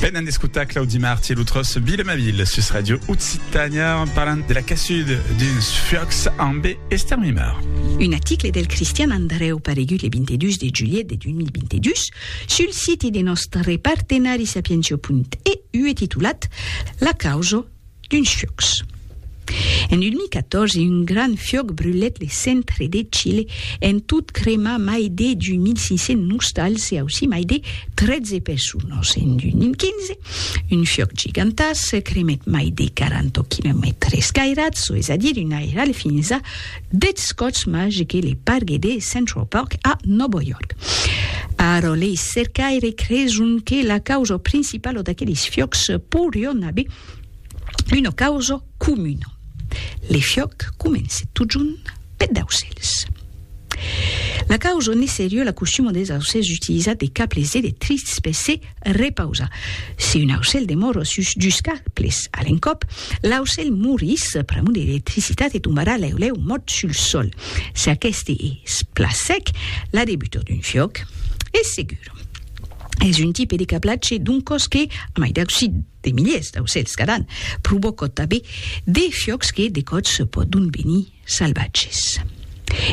Venen d'escotar Claudi Marti e l'utros Bile ma ville sus Radio Occitania en parlant de la cassud d'uns fuòcs amb Esther Mimar. Un article del Cristian Andreu paregut le 22 de julhet de 2022 sul siti de nòstre partenari sapientia.eu e titulat La causa D'uns fiòcs. En 2014, un grand fiòc brulèt le centre de Chile, en tot cremar mai de 2.500 nostals e aussí mai de 13 personas. En 2015, un fiòc gigantàs cremèt mai de 40 quilomètres cairats, çò es a dire un airal fins a Deth Scots Mage que le pargue de Central Park a Nòvo York. Ara lei cercaires creson que la causa principala d'aqueles fiòcs poirion aver una causa comuna. Le fiòc comence totjorn peth d'aucèls. La causa ne serie la costuma des aucèls d'utilizar de cables electrics per se Repausa. Si un aucèl demòro sus dus arbres a l'encòp, l'aucèl morís pr'amor de l'electricitat e tombarà lèu lèu mòrt sul sòl. Si aqueste es plan sec, la debutor d'un fiòc es segur. Es un tipe de cablatge d'un còs que, a mai d'aucir de miliers d'aucèls cada an, provòca tanben de fiòcs que de còps pòdon venir salvatges.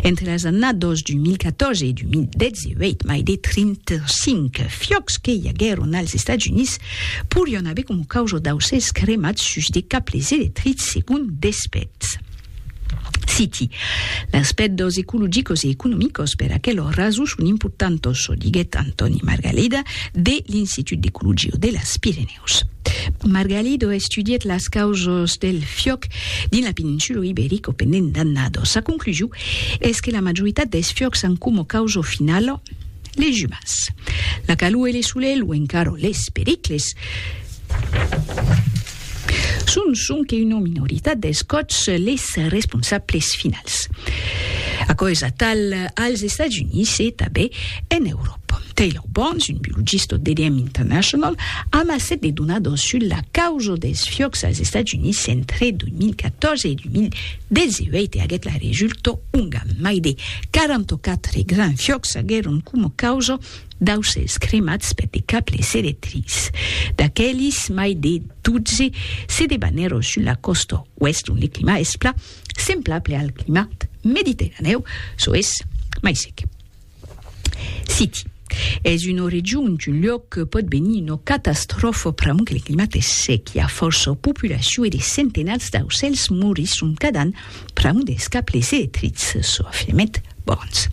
Entre las annados 2014 e 2018, mai de 35 fiòcs que i aguèron als Estats Units porián aver coma causa d'aucèls cremats sus de cables electrics, segon Despètz. Citi, Las pèrdós ecologicos e economicos per aquelò raso son importantos, çò diguèt Antòni Margalida de l'Institut d'Ecologia de las Pirenèus. Pòrtopòs. Margalido estudièt las causas del fiòc dins la peninsula Iberica pendent d'annadas. Sa conclusion es que la majoritat dels fiòcs an coma causa finala les umans. La calor e le solelh o encara les pericles son sonque una minoritat dels còps les responsables finals. Aquò es atal als Estats Units e tanben en Euròpa. Pom Taylor Barnes, un biologista d'EDM International, amassèt de donadors sus la causa dels fiòcs als Estats Units entre 2014 e 2018 e aguèt la resulta onga mai de 44 grands fiòcs aguèron coma causa d'aucèls cremats per de cables electrics. D'aquelis, mai de 12 se debanèron sus la còsta oèst ont le climat es plan semblable al climat mediterranèu, çò es mai sec. City. Es una region, un luòc que pòt venir una catastròfa pr'amor que le climat es sec, i a fòrça populacion e de centenats d'aucèls morisson cada an pr'amor dels cables electrics, çò afirmèt Burns.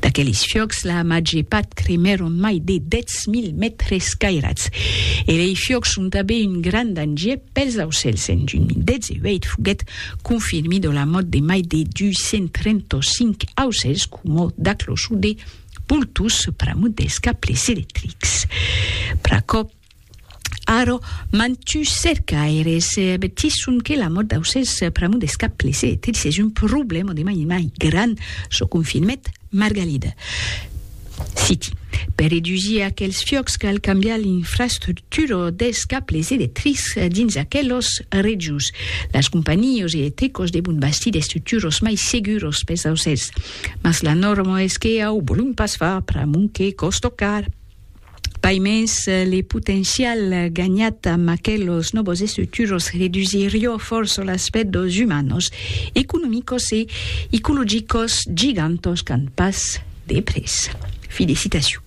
D'aqueles fiòcs, la màger part cremèron mai de 10.000 mètres cairats. E lei fiòcs son tanben un grand danger pels aucèls. En 2018 foguèt confirmida la mòrt de mai de 235 aucèls, coma d'aclochon de boltons pr'amont dels cables electrics. Pr'aquò, ara, mantuns cercaires avertisson que la mòrt d'aucèls pr'amont dels cables electrics es un problèma de mai en mai grand, çò confirmèt Margalida. Citi, Per redusir aquels fiòcs cal cambiar l'infrastructura dels cables electrics dins aquelas regions. Las companhios e tecos devon bastir d'estructuros mai seguros pes aucèls, mas la norma es que au volum pas far pr'amont que còsto car. Pai mens, le potencial ganhat amb aquelos nòvos estructuros redusirió fòrça l'aspèct dos humanos, economicos e icologicos gigantos qu'an pas de près. Fi de citacion.